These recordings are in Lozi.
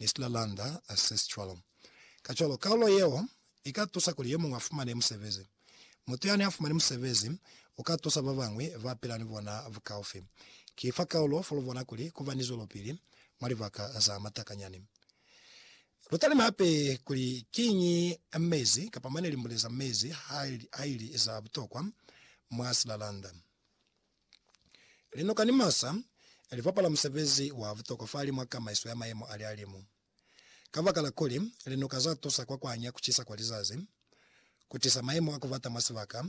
Nisla Landa Assist Cwalo. Kacwalo, kaulo yeo i ka tusa kuli yo muñwi a fumane musebezi. Mutu yani a fumani musebezi u ka tusa ba bañwi ba pila ni bona bukaufi. Ki fa kaulo fo lu bona kuli ku ba ni zwelopili mwa libaka za matakanyani. Lu talime hape kuli kiñi mezi kapa mane limbule za mezi ha li za butokwa mwa silalanda. Linoka ni masa li bapala musebezi wa butokwa fahali mwa kamaiso ya mayemo a lihalimu. Kabakala kuli linoka za tusa kwa kuhanya kucisa kwa lizazi, ku tisa mayemo a kubata mwa sibaka,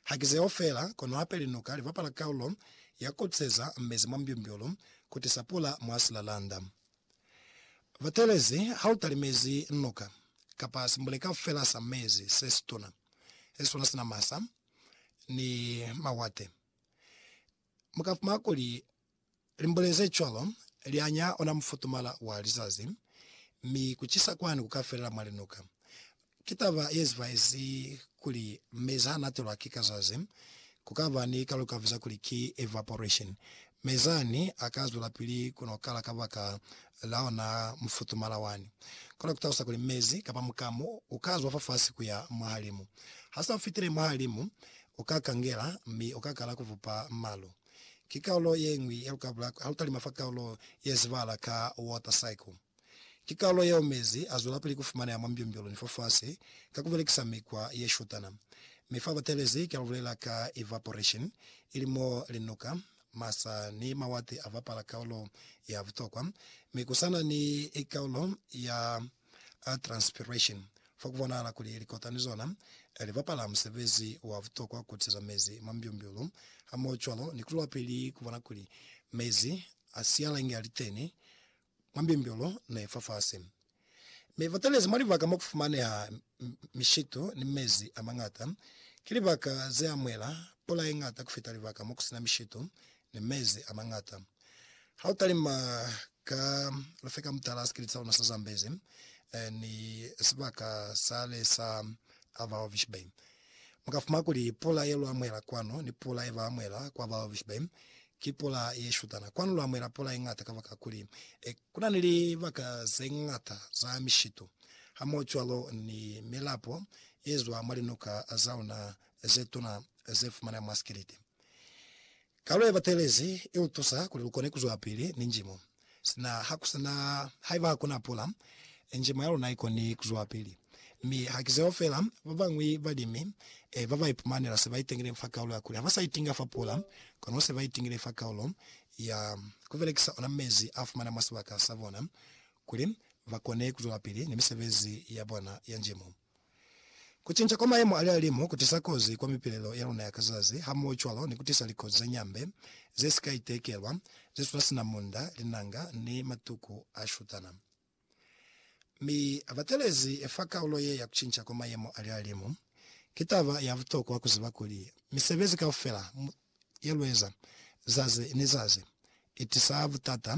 haki zeo feela, kono hape linoka li bapala kaulo ya kukuseza mezi mwa mbyumbyulu, ku tisa pula mwa silalanda. Batelezi, ha lu talimezi noka, kapa simbuleka feela sa mezi se situna, se sona sina masa, ni mawate. Mu ka fumana kuli limbule ze cwalo li anya ona mufutumala wa lizazi, mi ku cisa kwani ku ka felela mwa linuka. Ki taba ye zibaezi kuli mezi ha natelwa ki kazazi, ku ka ba ni kalukavu za kuli ki evaporation, Mi zani a ka zwelapili ku no kala kabaka la ona mufutumala wani. Kono ku talusa kuli mezi, kapa mukamu, u ka zwa fafasi ku ya mwahalimu. Ha sa fitile mwahalimu, u ka kangela, mi u ka kala ku vupa malu. Ki kaulo ye ñwi ya lukabula ha lu talima fa kaulo ye zibahala ka water cycle. Ki kalulo yeo mezi azwelapili kufumaneha mwa mbyumbyulu ni fafasi ka kubelekisa mikwa yeshutana. Mi fa batelezi kia lubulela ka evaporation, ili mo linuka, masa ni mawati abapala kaulo ya butokwa, mi kusana ni kaulo ya transpiration, fa kubonahala kuli likota ni zona libapala musebezi wa butokwa kutiseza mezi mwa mbyumbyulu hamohocwalo ni kuzwelapili kubona kuli mezi asialenge aliteni mwa mbimbilo ne i fafasi, mi ba talezi mwa libaka mo ku fumaneha mishitu ni mezi a mañata. Ki libaka ze amuhela pula ye ñata ku fita libaka mo ku si na mishitu ni mezi a mañata. Ha u talima ka lufekamutala sikili sa luna sa Zambezi ni sibaka sale sa Ava Hovis Bay, Mu ka fumana kuli pula ye lu amuhela kwanu ni pula ye ba amuhela kwa ba babushe ba indu ki pula ye shutana. Kwanu lu amuhela pula ye ñata kabakakuli ku na ni libaka ze ñata za mishitu hamohocwalo ni milapo ye zwa mwa linuka za luna ze tuna ze fumaneha mwa sikiliti. Kalu yebatelezi ilutusa kuli lukone kuzwapili ni njimo. Sina hakusina haiba hakuna pula, njimo yaluna ikoni kuzwapili. Mi hakizeo fela, babañwi balimi babaipumana se baitengile fa kaulo yakuli habasa itinga fa pula, kono se baitingile fa kaulo ya kubelekisa ona mezi afumana mwa sibaka sabona kuli bakone kuzwelapili ni misebezi yabona ya njimo. Kucinca kwa mayemo a lihalimu kutisa kozi kwa mipilelo ya luna ya ka zazi, hamohocwalo ni kutisa likozi za nyambe ze si ka itekelwa, ze suna sina munda, linanga, ni matuku a shutana. Mi batelezi fa kaulo ye ya kucinca kwa mayemo a lihalimu, ki taba ya butokwa kuziba kuli misebezi kaufela ye lueza zazi ni zazi itisa butata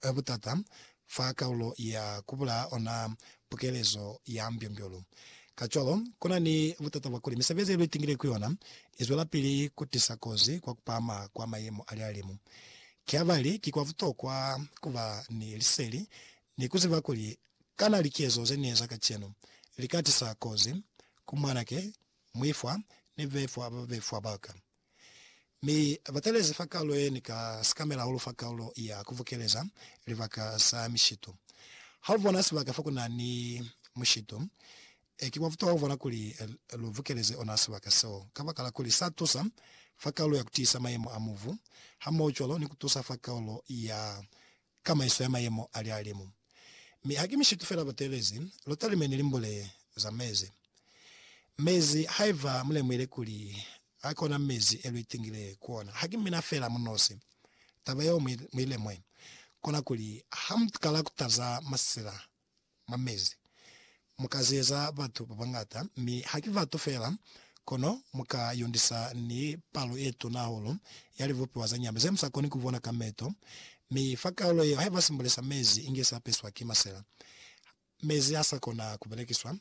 Ka butata, fa kaulo ya ku bulaya ona pukelezo ya mbyombyo-lu. Kacwalo, ku na ni butata bwa kuli misebezi ye lu itingile ku yona i zwelapili ku tisa kozi kwa ku pahama kwa mayemo a lihalimu. Ki habali ki kwa butokwa ku ba ni liseli ni ku ziba kuli kana likezo ze ni eza kacenu li ka tisa kozi ku mwanake, muifwa, ni bebefwa ba babefwa ba ka. Mi abatalezi fa kalulo yeni ka sikamela hahulu fa kalulo ya kubukeleza libaka sa mishito. Ha ubona sibaka fokuna ni mushito, ki kwa butokwa kubona kuli lu bukeleze ona sibaka seo, kabakala kuli sa tusa fa kalulo ya kutiisa mayemo a mubu, hamoho cwalo ni kutusa fa kalulo ya kamaiso ya mayemo a lihalimu. Mi haki mishitu fela bateelezi, lotalime ni limbule za mezi. Mezi, haiba mulemuhile kuli a kona mezi e luitingile ku ona, haki mina fela munosi. Taba yeo muilemue, kona kuli, ha mukala kutaza masila mwa mezi. Mu ka zeza batu ba bañata, mi ha ki batu fela, kono mu ka yondisa ni palo ye tuna hahulu ya libupiwa za nyama ze mu sa koni ku bona ka meto. Mi fa kaulo yeo, haiba simbule sa mezi inge sa peswa ki masela, mezi ha sa kona ku belekiswa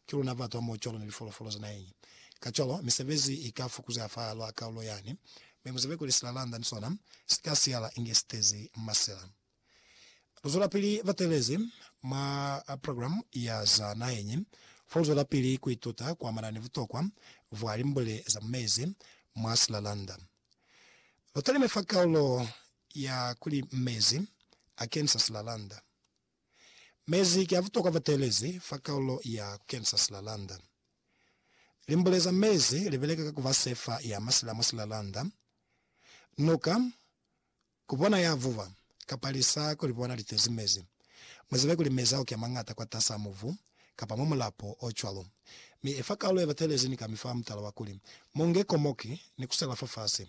ki luna batu hamoho cwalo ni lifolofolo za naheñi. Kacwalo, misebezi i ka fukuzeha fa lwa kaulo yani, mi mu zibe kuli silalanda ni sona si ka siyala inge si tezi masela. Luzwelapili batelezi mwa programu ya za naheñi foluzwelapili kuituta kuamana ni butokwa bwa limbule za mu mezi mwa silalanda. Lutalime fa kaulo ya kuli Mezi Akenisa Silalanda. Mezi ki a butokwa batelezi fa kaulo ya Kukenisa Silalanda. Limbule za mezi libeleka ka kuba sefa ya masila mwa silalanda, nuka, Ku bona ya vuba, kapa lisa ku li bona li tezi mezi. Mu zibe kuli mezi a uke mañata kwatas'a mubu, kapa mwa mulapo o cwalo. Mi efa kalulo ye batelezi ni kami fa mutala wa kuli, Mu nge komoki ni ku sela fafasi.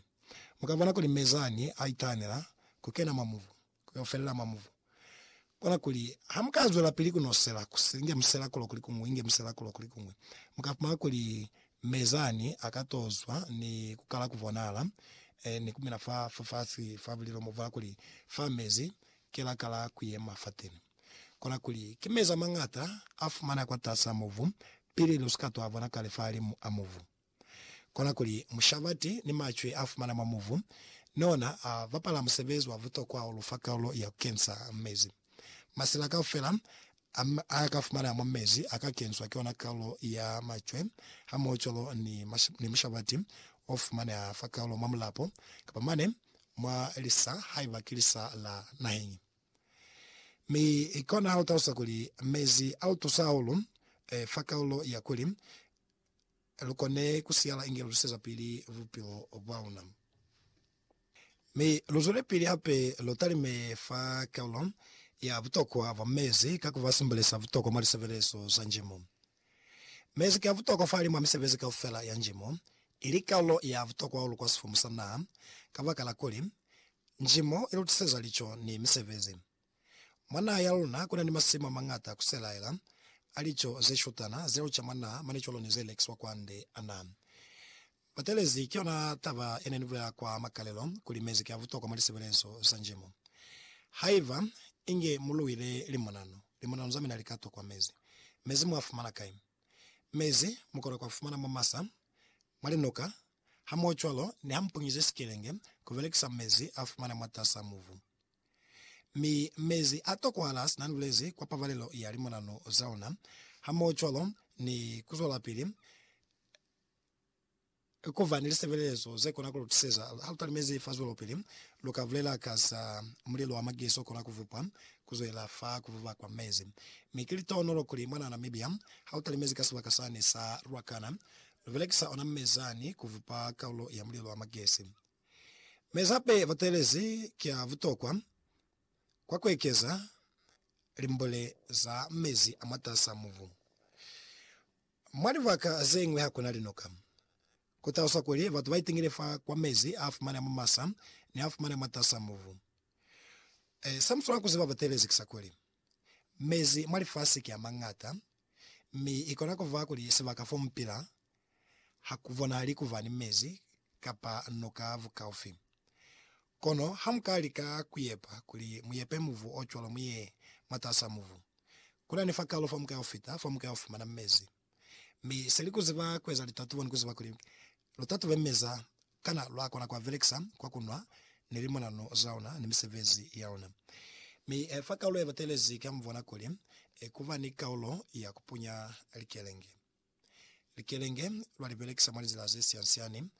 Mu ka bona kuli mezi ani a itahanela ku kena mwa mubu, ku yo felela mwa mubu. Kona kuli ha mu ka zwelapili ku nosela, ku inge musela kulo kuli kuñwi, inge musela kulo kuli kuñwi, mu ka fumana kuli mezani a ka to zwa ni ku kala ku bonala eh, ni ku mina fa, fa fasi fa bulilo mo fa kuli fa mezi ke la kala ku yema fateni. Kona kuli ki mezi a mañata a fumaneha kwa tasi a mubu pili lu si ka to a bona kale fahalimu a mubu. Kona kuli mushabati ni macwe a fumana mwa muvu ni ona a bapala musebezi wa butokwa o lu fa kalulo ya ku kensa mezi. Masila kaufela a a ka fumana mwa mezi a ka kenswa ki ona kalulo ya macwe hamohocwalo ni ni mushabati o fumaneha fa kalulo mwa mulapo kapa mane mwa lisa haiba ki lisa la naheñi. Mi kona ha lu talusa kuli mezi a lu tusa hahulu fa kalulo ya kuli lu kone ku siyala inge lu tusezapili bupilo bwa luna. Mi lu zwelepili hape lu talime fa kaulo ya butokwa bwa mezi ka ku ba simbole sa butokwa mwa lisebelezo za njimo. Mezi ki a butokwa fahalimw'a misebezi kaufela ya njimo, ili kaulo ya butokwa hahulu kwa sifumu sa naha, kabakala kuli, njimo i lu tuseza lico ni misebezi. Mwa naha ya luna kuna ni masimu amañata kuselaela a lico zeshutana ze luca mwa naha mane cwalo ni ze lekiswa kwande. Ana batelezi ki yona taba yene ni bulela kwa makalelo kuli mezi ki a butokwa mwa lisebelezo za njimo. Haiba inge mu luile limonano, limonano za mina li ka tokwa mezi. Mezi mu a fumana kai? Mezi mu kona ku a fumana mwa masa, mwa linuka, hamohocwalo ni ha mu punyize sikelenge ku belekisa mezi a fumana mwatas'a mubu. Mi mezi a tokohala sina lulezi kwa pabalelo ya limonanu za ona, hamohocwalo ni kuzwelapili kuba ni lisebelezo zekona kulutuseza. Halutalimezi fa zwelopili, luka bulela ka za mulelo wa magezi okona kuvupwa kuzwelela fa kuvuba kwa mezi. Mi ki litohonolo kuli mwanaa Namibia hautalimezi ka sibaka sani sa Ruacana, lubelekisa ona mezani kuvupa kaulo ya mulelo wa magezi. Mezape butelezi ki a butokwa kwa kuekeza limbule za mezi a mwatasaa mubu. Mwa libaka zeñwi hakuna linoka. Kutaluswa kuli batu baitingile fa kwa mezi a fumaneha mwa masa ni a fumaneha mwatasaa mubu. Ee, se muswanela kuziba butelezi ki sa kuli, Mezi mwa lifasi ki a mañata, mi i kona ku ba kuli sibaka fo mu pila ha ku bonahali ku ba ni mezi kapa nuka bukaufi. Kono ha mu ka lika ku yepa kuli mu yepe mubu o cwalo mu ye mwatas'a mubu, ku na ni fakalo fa mu ka yo fita, fa mu ka yo fumana mezi. Mi se li kuziba kueza litatubo ni kuziba kuli lutatube meza kana lwa kona kua belekisa kwa kunwa ni limonano zaona ni misebezi yaona. Mi fa kaulo ye batelezi kia mubona kuli kuba ni kaulo ya kupunya likelenge. Likelenge lwa li belekisa mwa lizila ze siansiani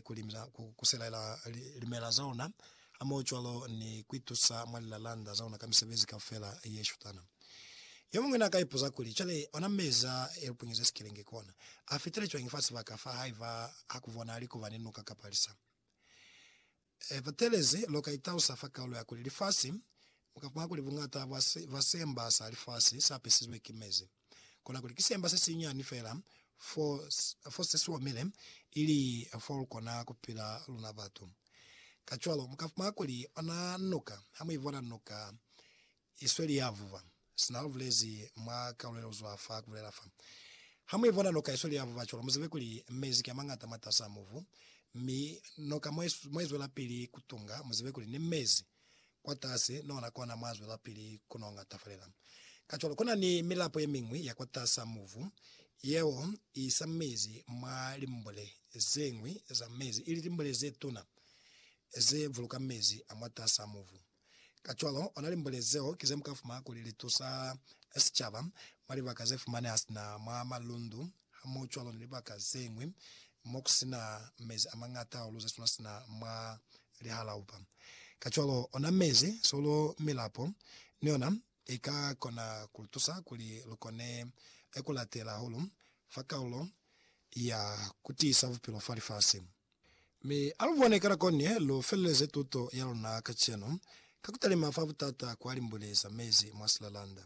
kuli ku kuselaela limela zaona hamohocwalo ni kuitusa mwa lilalanda zaona ka misebezi kaufela yeshutana. Yomuñwi naakai ipuza kuli, Cwale, ona mezi a elupunyeze sikelenge kona, afitile cwañi fa sibaka fa haiba hakubonahali kuba ni nuka kapa lisa? E, batelezi, loka itausa fa kaulo ya kuli lifasi, mukakuha kuli buñata bwa basemba sa lifasi sapesizwe ki mezi. Kona kuli ki semba se sinyani fela fo, fo se si omile, ili fo lu kona ku pila luna batu. Kacwalo, mu ka fumana kuli ona nuka, ha mu i bona nuka i sweli ya vuba, sina lu bulezi mwa kaulo ye lu zwa fa ku bulela fa. Ha mu i bona nuka i sweli ya vuba cwalo, mu zibe kuli mezi ki a mañata mwatas'a mubu, mi noka mo i zwelapili ku tunga, mu zibe kuli ni mezi kwatasi, nona kona mwa zwelapili ku nonga tafulela. Kacwalo, kuna ni milapo yemiñwi ya kwatasa mubu yeo iisa mezi mwa limbule zeñwi za mezi, ili limbule zetuna ze buluka mezi a mwatasa mubu. Kacwalo, ona limbule zeo ki zemuka fumana kuli litusa sicaba mwa libaka zefumaneha sina mwa malundu Hamoocwalo ni libaka zeñwi mokusina mezi amañata hahulu zesuna sina mwa lihalaupa. Kacwalo, ona mezi, sulu, milapo ni yona ika kona kulutusa kuli lukone kulatela hahulu fa kalulo ya kutiisa bupilo fa lifasi. Mi alubone kanako ne lufeleleze tuto yaluna kacenu ka kutalima fa butata kwalimbuleza mezi mwa silalanda.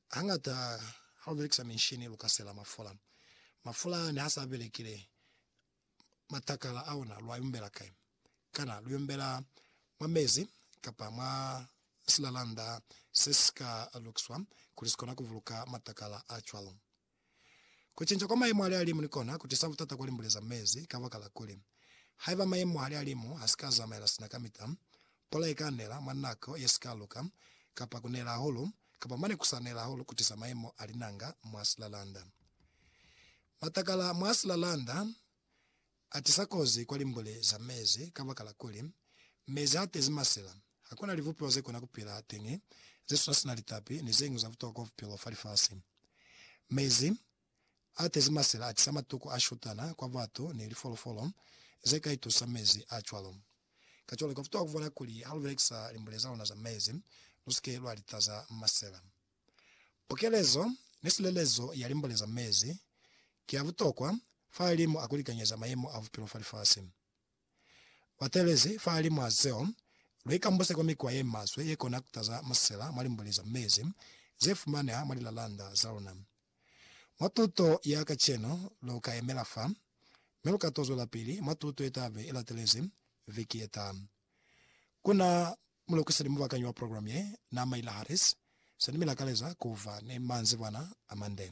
Hañata ha u belekisa minshini lu ka sela mafula. Mafula ne ha sa belekile, matakala a ona lu a yombela kai? Kana lu yombela mwa mezi kapa mwa silalanda se si ka lukiswa kuli si kona ku buluka matakala a cwalo? Kucinca kwa mayemo alialimu ni kona kutisa butata kwa limbule za mezi, kabakala kuli, haiba mayemo alialimu hasika zamaela sina kamita, pula ika nela mwa nako yesika luka, kapa kunela hahulu, kapa mane kusa nela hahulu kutisa mayemo a linanga mwa silalanda. Matakala mwa silalanda Atisa kozi kwa limbule za mezi kabakala kuli, mezi haatezi masela. Hakuna libupiwa zekona kupila teñi zesuna sina litapi ni zeñwi za butokwa bupilo fa lifasi. Mezi aatezi masela atisa matuku ashutana kwa batu ni lifolofolo zeka itusa mezi acwalo. Kacwalo, kabutokwa kubona kuli halubelekisa limbule zaluna za mezi, lusike lwalitaza masela. Pukelezo ni silelezo ya limbo leza mezi ki ya butokwa fahalimwa a kulikanyeza mayemo a bupilo fa lifasi. Batelezi fahalimwa zeo, luikambuse kwa mikwa ye maswe ye kona kutaza masela mwa limbo leza mezi ze fumaneha mwa lilalanda za luna. Mwa tuto ya kacenu lu ka yemela fa, mi lu ka to zwelapili mwa tuto ye tabe ilatelezi viki ye taha. Ku na Mulukisi ni mubakanyi wa program ye, Na Mayla Harris, Sani mi lakaleza kuva ni manzibwana amande.